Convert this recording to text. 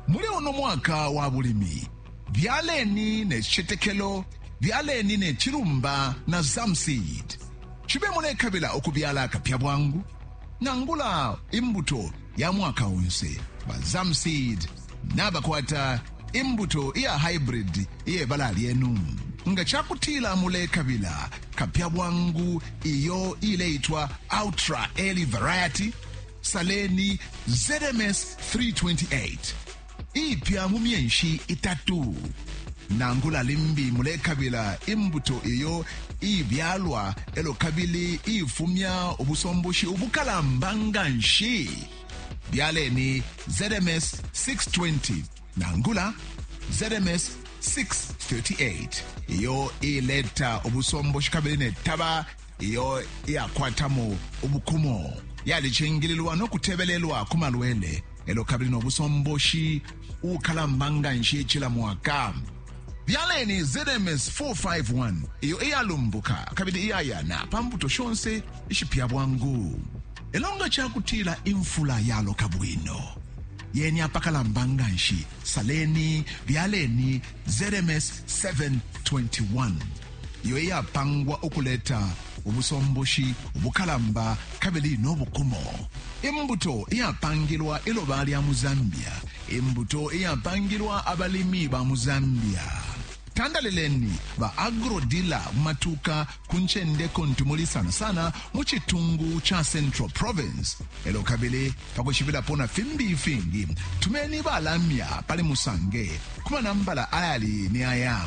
Muli uno mwaka wa bulimi, byaleni ne citetekelo, byaleni ne cilumba na Zamseed. Cibe mulekabila ukubyala akapya bwangu nangula imbuto ya mwaka onse, ba Zamseed nabakwata imbuto iya hybrid iye bala lyenu. Nga ca kutila mulekabila kapya bwangu iyo ileitwa Ultra Early Variety, Saleni ZMS 328 ipya mu myenshi itatu nangula limbi mulekabila imbuto iyo ibyalwa elo kabili ifumya ubusomboshi ubukalamba nga nshi byaleni ZMS 620 nangula ZMS 638 iyo ileta ubusomboshi kabili netaba iyo iyakwatamo ubukumo yalicingililwa no kutebelelwa ku malwele elo kabili no busomboshi ukalamba nga nshi cila mwaka byaleni zms 451 iyo iyalumbuka kabili iyayana pa mbuto shonse ishipya bwangu elo nga cakutila imfula yaloka bwino yeni apakalamba nga nshi saleni byaleni zms 721 iyo iyapangwa ukuleta ubusomboshi ubukalamba kabili no bukumo. Imbuto iyapangilwa iloba lya mu Zambia. Imbuto iyapangilwa abalimi ba mu Zambia. Tandalileni ba agrodila mu matuka ku ncende kuntu muli sana sana mu citungu ca Central Province. Elo kabili pa kwishibilapo na fimbi ifingi, tumeni balamya pali Musange ku manambala ayali ni aya.